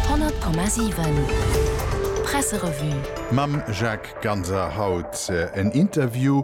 100,7 Presserevue. Mam Jacques Ganser haut en Interview,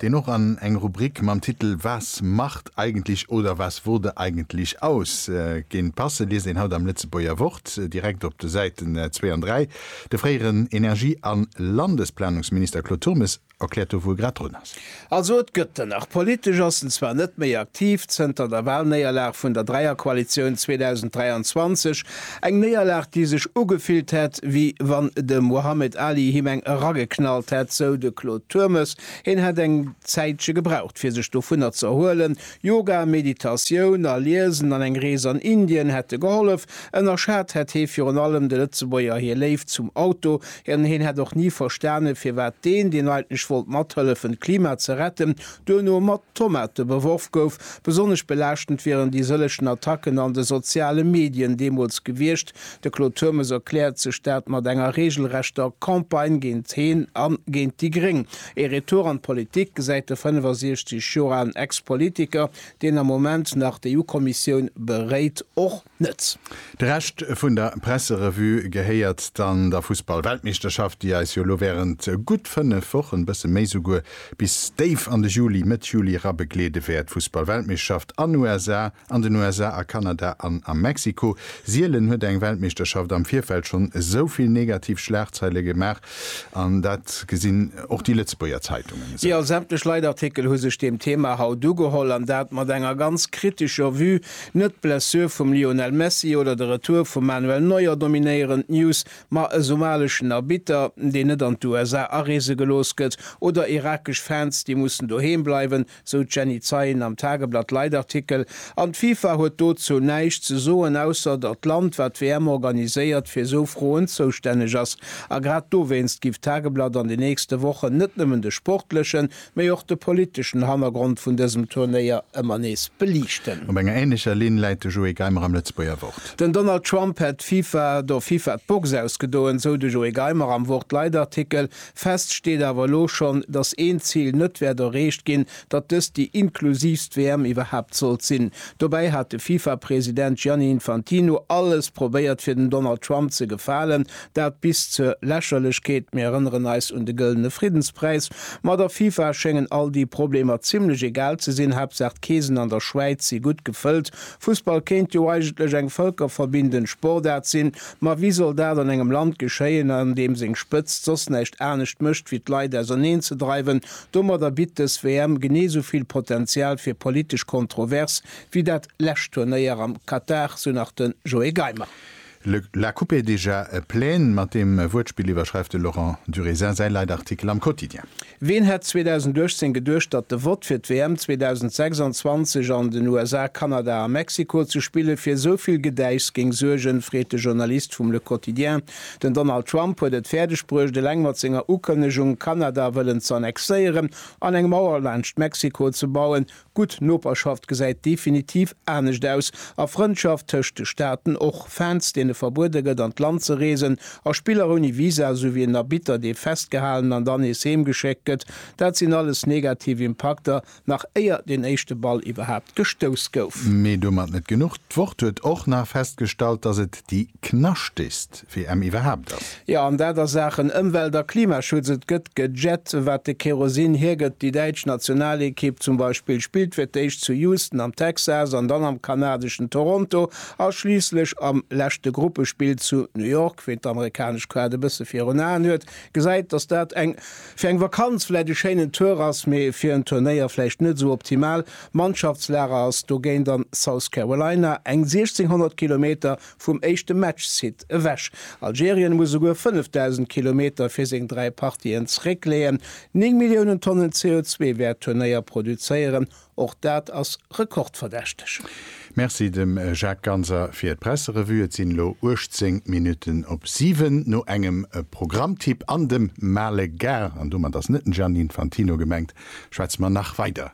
deen och an eng Rubrik mam Titel Was macht eigentlich oder was wurde eigentlich aus? géing passen, liest een haut am Lëtzebuerger Wort, direkt op de Säiten 2 an 3. De fréieren Energie a Landesplanungsminister Claude Turmes erkläert do wou e grad drun ass. Also et gëtt en nach. Politesch ass en zwar net méi aktiv zënter der Walnéierlag vun der Dräierkoalitioun 2023, eng Néierlag déi sech ugefillt hätt wéi wann de Mohamed Ali him eng erageknallt hätt, sou de Claude Turmes. Hien hätt eng Zäitche gebraucht fir sech dovunner ze erhuelen. Yoga, Meditatioun a Liesen an eng Rees an Indien hätte gehollef. Ënnerschat hätt hie virun allem de Lëtzebuerger hir Léift zum Auto, An hien hätt och ni verstanen, firwat deen, deen eigentlech wollt mathëllefen d'Klima ze retten, duerno mat Tomate beworf gouf. Besonnesch belaaschtend wieren déi sëllechen Attacken an de soziale Medien deemools gewiescht. De Claude Turmes erkläert sech dat mat enger reegelrechter Campagne géint heen a géint déi Gréng. Ee Retour an d'Politik gesäit de 65 Joer alen Ex-Politiker, deen am Moment nach d'EU-Kommissioun beréit, och. net. De Rescht vun der Presserevue gehéiert dann der Fussballweltmeeschterschaft, déi eis jo elo wärend gutt 5 Wochen, bësse méi souguer, bis déif an de Juli, Mëtt Juli era begleede wäert. Fussballweltmeeschterschaft an USA, an den USA, a Kanada an a Mexiko. Sielen huet eng Weltmeeschterschaft am Virfeld schonn esou vill negativ Schlagzeile gemaach, An dat gesinn och déi Lëtzebuerger Zeitungen esou. Jo, sämtlech Leitartikel hu sech deem Thema haut ugeholl, an dat mat enger ganz kritescher Vue. Net d'Blessure vum Lionel Messi oder de Retour vum Manuel Neuer dominéieren d'News, ma e somaleschen Arbitter, deen net an d'USA areese gelooss gëtt, oder irakesch Fans, déi mussen doheem bleiwen, sou d'Jenny Zeien am Tageblatt Leitartikel, an d'FIFA huet dozou näischt ze soen, ausser datt d'Land, wat d'WM organiséiert, fir sou Froen zoustänneg ass. A grad dowéinst giff d'Tageblatt an den nächste Wochen net nëmmen de sportlechen, mee och de politeschen Hannergrond vun dësem Turnéier ëmmer nees beliichten. Op enger änlecher Linn läit de Joé Geimer am Lëtzebuerger Wort. Den Donald Trump hätt d'FIFA, der FIFA d'Box ausgedoen, sou de Joé Geimer am Wort Leitartikel. Fest steet awer elo schonn, datt een Zil net wäert erreecht ginn, datt dëst déi inklusiivst WM iwwerhaapt sollt sinn. Dobäi hat de FIFA-President Gianni Infantino alles probéiert fir dem Donald Trump ze gefalen, dat bis zur Lächerlechkeet. Mir erënneren eis un de Gëllene Friddenspräis. Ma der FIFA schéngen all déi Problemer zimmlech egal ze sinn, Haaptsaach d'Keesen an der Schwäiz si gutt gefëllt, Fussball kéint jo eigentlech eng völkerverbindend Sportart sinn, ma wéi soll dat an engem Land geschéien, an deem seng Spëtzt soss näischt anescht mécht wéi d'Leit auserneen ze dreiwen? Domadder bitt dës WM genee esou vill Potenzial fir politesch Kontrovers wéi dat lescht Turnéier am Katar, sou nach de Joé Geimer. Le La coupe est déjà pleine, mat deem Wuertspill iwwerschreift de Laurent Durésin säi Leitartikel am Quotidien. Ween hätt 2018 geduecht, datt de Vott fir d'WM 2026 an den USA, Kanada a Mexiko ze spille fir esou vill Gedäichs géing suergen, freet de Journalist vum Le Quotidien. Den Donald Trump huet et fäerdeg bruecht, eleng mat senger Ukënnegung, Kanada wëllen ze annexéieren an eng Mauer laanscht Mexiko ze bauen, Gutt Noperschaft gesäit definitiv anescht aus, a Frëndschaft tëscht de Staaten och. Fans, deene verbuede gëtt an d'Land ze reesen, a Spiller ouni Visa, esou wéi en Arbitter, dee festgehalen an dann nees heem geschéckt gëtt, dat sinn alles negativ Impakter, nach éier deen éischte Ball iwwerhaapt gestouss gouf. Mee domat net genuch, d'Wort huet och nach festgestallt, datt et déi knaschtegst. WM iwwerhaapt ass. Jo, an dat a Saachen Ëmwelt a Klimaschutz. Et gëtt gejett, wat de Kerosin hiergëtt. Déi däitsch Nationalekipp zum Beispill spillt fir d'éischt zu Houston am Texas an dann am kanadeschen Toronto a schliisslech am leschte Gruppespill zu New York. Ween d'amerikanesch Kaart e bësse virun Aen huet, gesäit, datt dat fir eng Vakanz vläicht e schéinen Tour ass, mee fir en Turnéier vläicht net esou optimal. Mannschaftslager ass dogéint an South Carolina, eng 1.600 Kilometer Vum éischte Matchsite ewech. Algerien muss souguer 5.000 Kilometer fir seng dräi Partien zeréckleeën. Néng Milliounen Tonnen CO2 wäert d'Turnéier produzéieren. Och dat ass rekordverdächteg. Merci dem Jacques Ganser fir d'Presserevue. Et sinn elo 18 Minutten op 7. No engem Programmtipp an dem Male Gars, an domat ass net den Gianni Infantino gemengt, schwätze mer nach weider